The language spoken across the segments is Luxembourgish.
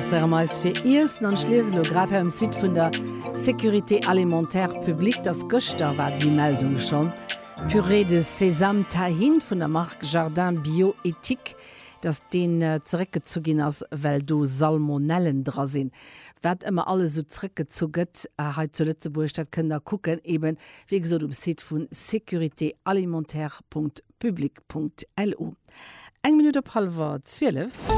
Interesséiere mer eis fir Iessen an ech liese lo grad hei um Site vun der Sécurité alimentaire publique, dass gëschter war déi Meldung schonn, Pürée de Sesame Tahin vun der Mark Jardin Bio Ethique, dass deen zeréckgezu ginn ass, well do Salmonellen dra sinn. Wat ëmmer alles esou zrëckgezu gëtt hei zu Lëtzebuerg, dat kënnt der kucken, eeben, wéi gesot, um Site vu sécurité alimentaire. public.lu. Eng Minutt op hallwer 12.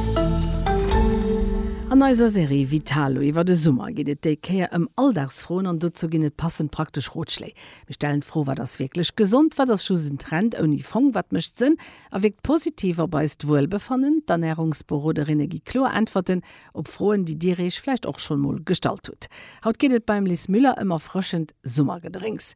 An eiser Serie Vitalo iwwer de Summer geet et déi Kéier ëm Alldagsfroen an dozou ginn et passend praktesch Rotschléi. Mir stellen d'Fro, Wat ass wierklech gesond? Wat ass just en Trend ouni Fong? Wat mécht Sënn a wierkt positiv op eist Wuelbefannen? D'Ernärungsberoderinne gi kloer Äntwerten op Froen, déi Dir Iech vläicht och schonn emol gestallt hutt. Haut geet et beim Lis Müller ëm erfrëschend Summergedrénks,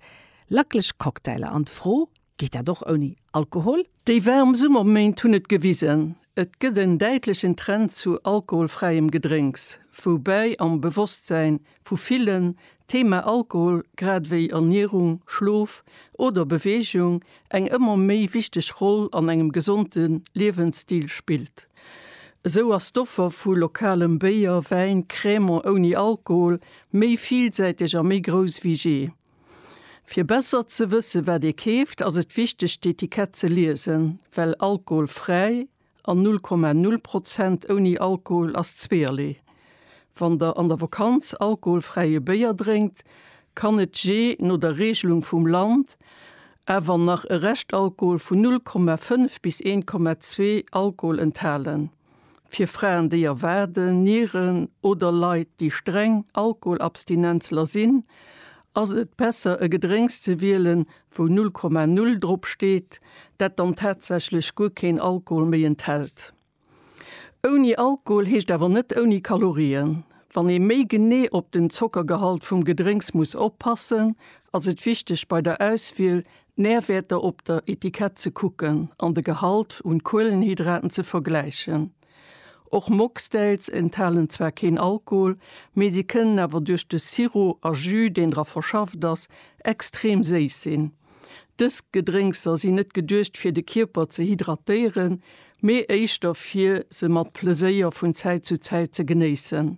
lacklech Cocktailer an d'Fro, Geet dat och ouni Alkohol? Déi waarm Summerméint hunn et gewisen, et gëtt en däitlechen Trend zu alkoholfräiem Gedrénks, woubäi am Bewosstsäin vu villen d'Thema Alkohol grad ewéi Ernierung, Schlof oder Beweegung eng ëmmer méi wichteg Roll an engem gesonde Liewensstil spillt. Esou ass d'Offer vu lokalem Béier, Wäin, Cremant ouni Alkohol méi villsäiteg a méi grouss wéi jee. Fir besser ze wësse wat ee keeft, ass et wichteg d'Etikett ze liesen, well alkoholfräi an 0,0 Prozent ouni Alkohol ass zweerlee. Wann der an der Vakanz alkoholfräie Béier drénkt, kann et jee no der Reegelung vum Land awer nach e Reschtalkohol vun 0,5 bis 1,2 Alkohol enthalen. Fir Fraen, déi erwaarden, Nieren oder Leit, déi streng Alkoholabstinenzler sinn, ass et besser e Gedrénks ze wielen, wou 0,0 drop steet, dat dann tatsächlech guer keen Alkohol méi enthält. Ouni Alkohol heescht awer net ouni Kalorien. Wann ee méi genee op den Zockergehalt vum Gedrénks muss oppassen, ass et wichteg bei der Auswiel D'Närwäerter op der Etikett ze kucken an de Gehalt un Kuelenhydraten ze vergläichen. Och Mocktails enthalen zwar keen Alkohol, mee si kënnen awer duerch de Sirop a Jus, deen dra verschafft ass, extrem séiss sinn. Dës Gedrénkser sinn net geduecht fir de Kierper ze hydratéieren, mee éischter fir se mat Pleséier vun Zäit zu Zäit ze genéissen.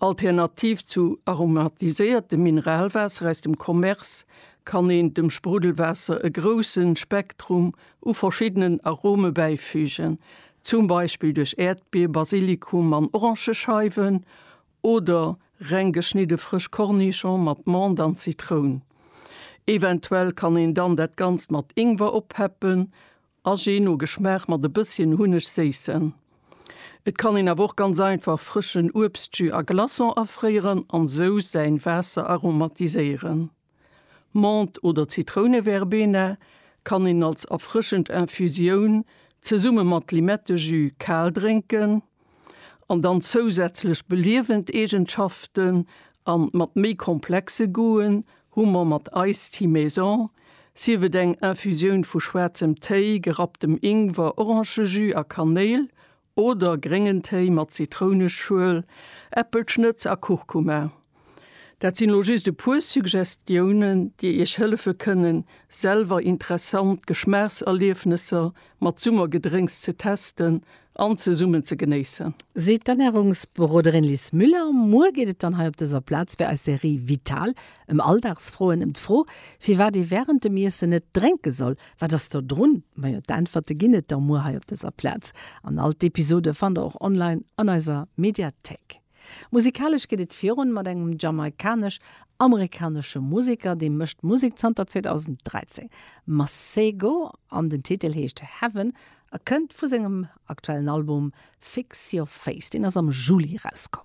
Alternativ zu aromatiséiertem Mineralwaasser aus dem Commerce kann een dem Spruddelwaasser e grousse Spektrum u verschiddenen Arome bäifügen, zum Beispill duerch Äerdbier, Basilikum an Orangescheiwen oder reng geschnidde frësch Kornischong mat Mant an Zitroun. Eventuell kann een dann dat Ganzt mat Ingwer oppeppen A je no Geschmaach mat e bësschen Hunneg séissen. Et kann een awer och ganz einfach frëschen Uebstjus a Glaçon afréieren an sou säin Waasser aromatiséieren. Menthe oder Zitrouneverbena kann een als erfrëschend Infusioun zesumme mat Limettejus kal drénken. an dann zousätzlech beliewend Eegenschaften an mat méi komplexe Goûten hu mer mat Iced Tea Maison, sief et eng Infusioun vu schwaarzem Téi, gerapptem Ingwer, Orangejus a Kanéil oder gréngen Téi mat Zitrounenschuel, Äppelschnëtz a Kurkuma. Dat sinn elo just e puer Suggestiounen, déi iech hëllefe kënnen, selwer interessant Geschmaachserliefnesser mat Summergedrénks ze testen an zesummen ze genéissen. Seet d'Ernärungsberoderin Lis Müller. Muer geet et dann hei op dëser Plaz fir eis Serie Vital ëm Alldagsfroen, ëm d'Fro, firwat ee wärend dem Iessen net drénke soll. Wat ass do drun? Majo, d'Äntwerte ginn et da muer hei op dëser Plaz. An all d'Episode fannt der och online an eiser Mediathéik. Musikalesch geet et virun mat engem jamaikanesch-amerikanesche Museker, dee mécht Musek zanter 2013. Masego an den Titel heescht Heaven a kënnt vu sengem aktuellen Album Fix Your Face, deen ass am Juli erauskomm.